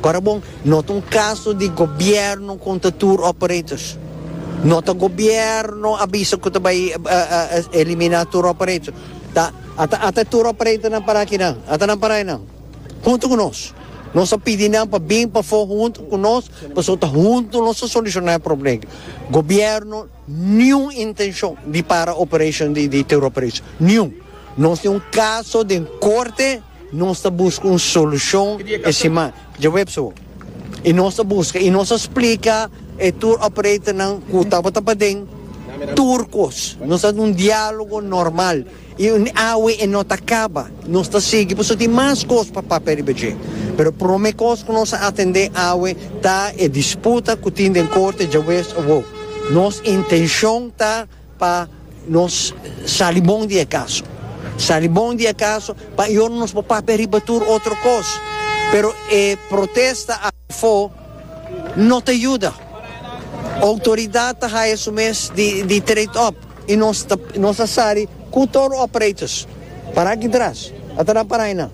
Ora bon, no ta un caso di gobierno contra tour operators. No ta gobierno a bisa cu ta bay elimina tour operator. Ta ata ata e tour operatornan para akinan. Ata nan para aynan hunto cu nos. Nos a pidi nan pa bin pafo hunto cu nos pasobra ta hunto nos ta soluciona e problem. Gobierno niun intencion di para operation di tour operators. Niun. Nos tin un caso den corte. Nos ta buska un solushon e siman djaweps awo i nos ta buska i nos a splika e tour operatornan ku tabata paden tur kos. Nos ta un dialogo normal i awe e no ta kaba. Nos ta sigui pasobra tin mas kos pa papia riba dje. Pero prome kos ku nos a atende awe ta e disputa ku tin den korte djaweps awo. Nos intenshon ta. Pa nos sali bon di e kaso. Sali bon di e kaso pa yono nos por papia riba tur otro kos. Pero e protesta afo no ta yuda. Outoridat ta haya su mes di trade up i nos ta sali ku tur operators. Para aki tras. Ata nan para ahi nan.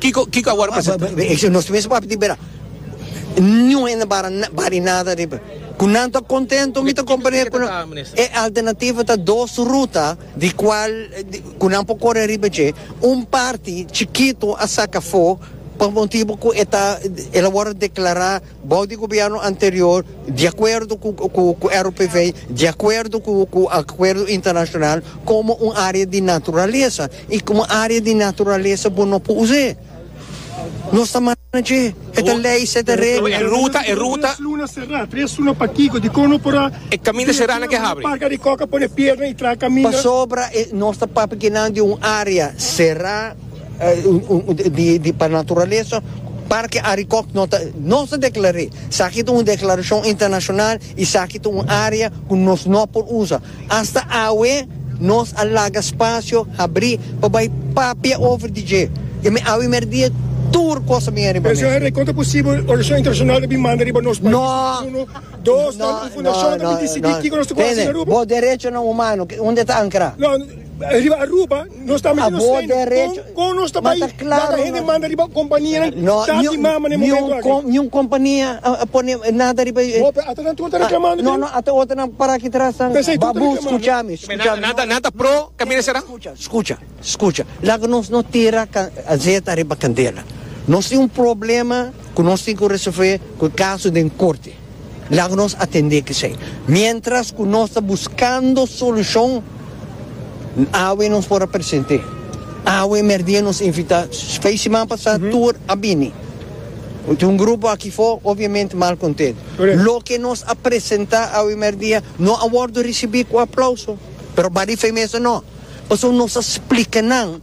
Kiko kiko a wòrdu presentá? Esei nos mes papia di bira. Niun hende bara bari nada riba. Ku nan ta kontentu mi ta komprende ku e alternativa ta dos ruta di kual ku nan por kore riba dje. Un parti chikitu a saka afó pa motibu ku e ta el a wòrdu deklará. Bou di gobièrnu anterior, di akuerdo ku RPV, di akuerdo ku akuerdo internashonal, komo un área di naturalesa. I komo área di naturalesa bo no por us'é. Nos ta mana dje. E ta lei, se ta regla. E ruta, e ruta. Tres luna será, tres luna pa kiko? Dikon no por a. E kaminda será nan ke habri. Un parka di kòk a pone piedra i traha kaminda. Pasobra nos ta papia kinan di un área será. Di pa naturalesa Parke Arikòk no ta nos ta deklar'é. Saki ta un deklarashon internashonal i saki ta un área ku nos no por usa. Asta awe nos a laga spasio habrí pa bai papia over di dje. I mi awe mer'dia tur kos a bini riba mesa. Kon ta posibel organisashon internashonal ta bin manda riba nos pais? Uno. Dos, nan un fundashon a bin disidí kiko nos ta kore hasi na Aruba? Bo derecho nan humano, unda e ta ankrá? Riba Aruba nos ta mester nos train kon nos ta bai laga hende manda riba kompanianan tati mama na e momento aki. Niun kompania a pone nada riba. Hopi ata nan tur ta reklamando dje. No no ata otro nan para aki tras nan babu skucha mi skucha mi. Nan ta pro kamina sera. Skucha skucha skucha laga nos no tira azet ariba kandela nos tin un problema ku nos tin ku resolve ku e kaso den korte. Laga nos atendé kesei. Miéntras ku nos ta buskando solushon, awe nos por a present'é. Awe merdía nos invitá fei siman pasá tur a bini. Tin un grupo aki afó obviamente mal kontent. Loke nos a presentá awe merdía no a wòrdu risibí ku aplauso, pero bali fei mester no. Pasobra nos a splika nan.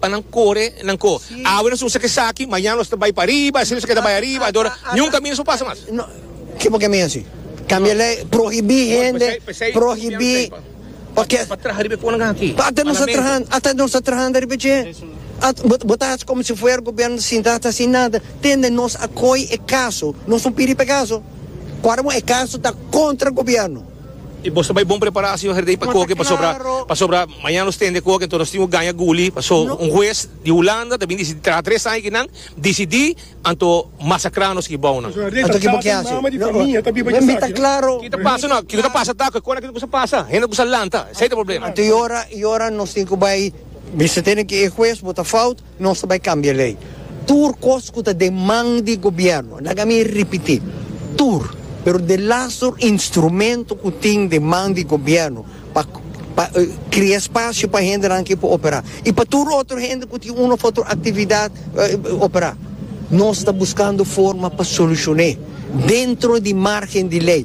pa nan kore nan ko awe nos usa kesaki mañana nos ta bai pariba asina nos a keda bai ariba adora niun kaminda nos a pasa mas. Ke por ke mi hasi? Kambia lei prohibí hende prohibí orkes pa traha riba e konan aki ata nos ta trahando ata nos ta trahando riba dje bo ta haci komo si fuera gobierno ta sinta ta haci nada tende nos a koi e kaso nos no pidi pa e kaso ku ora bo e kaso ta kontra gobierno. I boso bai bon prepará señor Herdey pa koke pasobra pasobra mañana nos tende koke enton nos tin ku gaña guli paso un hues di Hulanda ta bin disidí traha tres aña ki nan disidí anto masakrá nos ki bou nan. Anto ki bo kier hasi? Wen mi ta klaro. Ki ta pasa no kiko ta pasa ta kon a kiko sa pasa hende ku sa lanta esei ta problema. Anto i ora i ora nos tin ku bai bisa tene ke e hues bo ta fout Nos ta bai kambia lei. Tur kos ku ta den man di gobièrnu, laga mi ripití, tur, pero di las tur instrumentu ku tin den man di gobièrnu pa pa krea spasio pa hendenan ke por operá i pa tur otro hende ku tin un òf otro aktividat operá, nos ta buskando forma pa solushoné dentro di margen di lei.